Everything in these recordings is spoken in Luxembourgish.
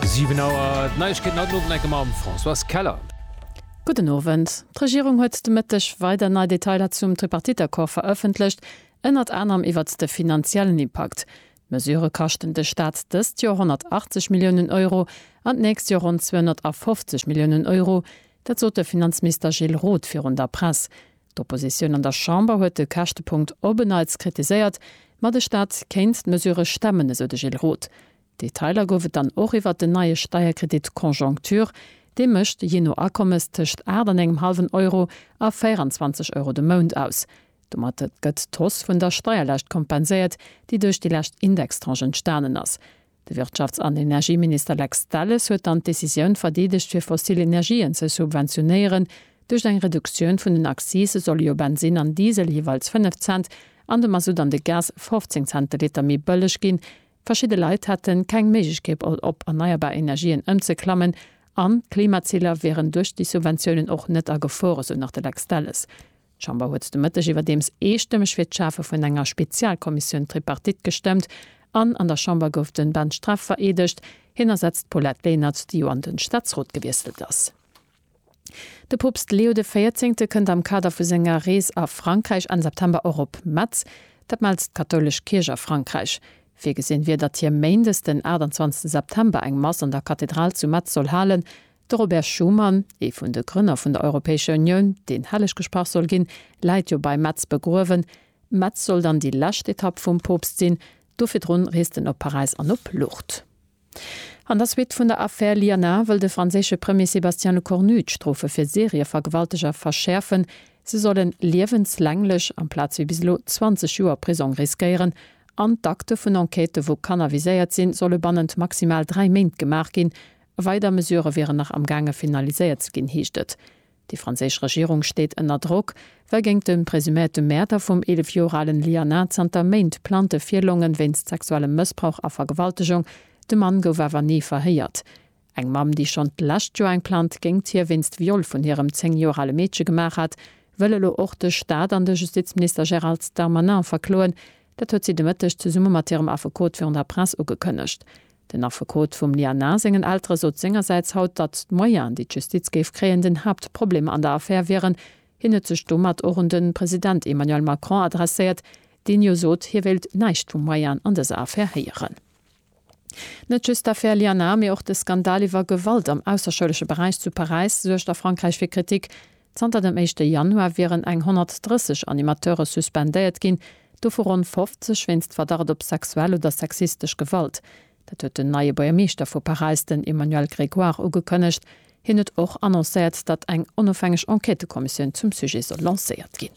7 Auer, d'Neiegkeeten haut den Owend enke mam Françoise Keller. Gudden Owend. D'Regierung huet de Mëtteg weider nei Detailer zum Tripartite-Accord verëffentlecht, ënnert anerem iwwert de finanziellen Impakt. D'Mesure kaschten de Staat dëst Joer 180 Milliounen Euro an d'nächst Joer ronn 250 Milliounen Euro. Dat sot de Finanzminister Gilles Roth virun der Press. D'Oppositioun an der Chamber huet de Käschtepunkt op en Neits kritiséiert, ma de Staat kéint d'Mesure stemmen, esou de Gilles Roth. Detailer gouf et dann och iwwert den neie Steierkredit Conjoncture. Dee mécht, jee no Akommes, tëscht aacht an engem hallwen Euro a 24 Euro de Mount aus. Domat gëtt d'Hausse vun der Steierlaascht kompenséiert, déi duerch déi lescht Indextranche entstanen ass. De Wirtschafts an Energieminister Lex Delles huet dann d'Decisioun verdeedegt, fir fossil Energien ze subventionéieren. Duerch eng Reduktioun vun den Accise solle jo Bensin an Diesel jeeweils 5 Cent an de Masutt an de Gas 15 Cent de Liter méi bëlleg ginn. Verschidde Leit hätte keng Méiglechkeet op erneierbar Energien ëmzeklammen an d'Klimaziler wieren duerch déi Subventiounen och net a Gefor, esou nach de Lex Delles. D'Chamber huet de Mëtteg iwwerdeems eestëmmeg fir d'Schafe vun enger Spezialkommissioun Tripartite gestëmmt an an der Chamber gouf de Ben Streff vereedegt. Hien ersetzt d'Paulette Lenert, déi jo an de Staatsrot gewiesselt ass. De Poopst Leo de Véierzéngte kënnt am Kader vu senger Rees a Frankräich Enn September och op Metz, dat mellt d'kathoulesch Kierch a Frankräich. Virgesinn wier, datt hie Méindes den 28 September eng Mass an der Kathedral zu Metz soll halen. De Robert Schuman, ee vun de Grënner vun der Europäescher Unioun, deen helleg gesprach soll ginn, läit jo bei Metz begruewen. Metz soll dann déi lescht Etapp vum Poopst sinn, do virdrun reest en op Paräis an op Lourdes. An der Suite vun der Affär Liana wëll de franséische Premier Sébastien Lecornu d'Strofe fir Serievergewalteger verschäerfen. Se solle liewenslänglech, amplaz wéi bis elo 20 Joer Prisong riskéieren. An d'Akte vun Enquêtë wou Kanner viséiert sinn, solle bannent maximal dräi Méint gemaach ginn. Weider Mesurë wieren nach am gaange finaliséiert ze ginn, heescht et. Déi franséisch Regierung steet ënner Drock, well géint de presuméierte Mäerder vum 11 Joer alen Lianah zanter Méint Plainte virlongen, wéinst sexuellem Mëssbrauch a Vergewaltegung. De Mann gouf awer ni verhéiert. Eng Mamm, déi schonn d'lescht Joer eng Plainte géingt hie wéinst Viol vun hirem 10 Joer ale Meedche gemaach hat, wëll elo och de Staat an de Justizminister Gérald Darmanin verkloen, Dat huet si de Mëtteg zesumme mat hirem Affekot virun der Press ugekënnegt. Den Affekot vum Liana sengen Eltere sot sengersäits haut, datt d'Moyenë, déi d'Justiz géif kréien, den Haaptproblem an der Affär wieren. Hien huet sech domat och un de President Emmanuel Macron adresséiert, deen jo sot, hie wéilt näischt vu Moyenë an dëser Affär héieren. Net just d'Affär Lianar, mee och de Skandal iwwer Gewalt am ausserschoulesche Beräich zu Paräis suergt a Frankräich fir Kritik. Zanter dem éischte Januar wieren eng 130 Animateure suspendéiert ginn, dovu ronn 50 wéinst Verdacht op sexuell oder sexistesch Gewalt. Dat huet den neie Buergermeeschter vu Paräis, den Emmanuel Grégoire, ugekënnegt. Hien huet och annoncéiert, datt eng onofhängeg Enquêtëkommissioun zum Sujet soll lancéiert ginn.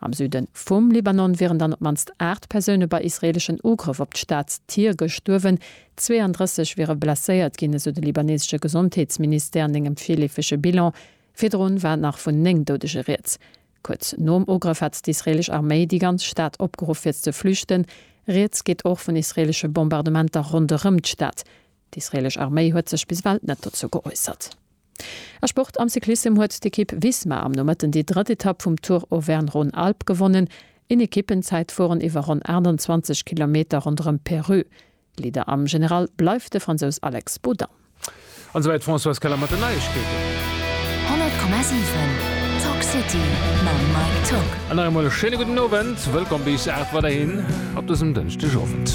Am Süde vum Libanon wieren dann op d'mannst 8 Persoune bei israeeleschen Ugrëff op d'Staatstier gestuerwen, 32 wiere blesséiert ginn, esou de libaneesesche Gesondheetsministère an engem virleefege Bilan. Virdrun war nach vun 9 Doudege rieds. Kuerz nom Ugrëff hat d'israeelesch Arméi déi ganz Stad opgeruff fir ze flüchten. Rieds geet och vun israeelesche Bombardementer ronderëm d'Stad. D'israeelesch Arméi huet sech bis ewell net dozou geäussert. A Sport, Am Cyclissem huet d'Ekipp Visma am Nomëtten déi drëtt Etapp vum Tour Auvergne-Rhône-Alpes gewonnen. Een Ekippenzäitfueren iwwer ronn 28 Kilometer ronderëm Peru. Leader am General bleift de Fransous Alex Baudin. An esou wäit d'Françoise Keller mat den Neiegkeeten. 100,7 Talk City mam Mike Tock. An nach eemol e schéine gudden Owend. Wëllkomm bis 8 weiderhin op dësem Dënschdegowend.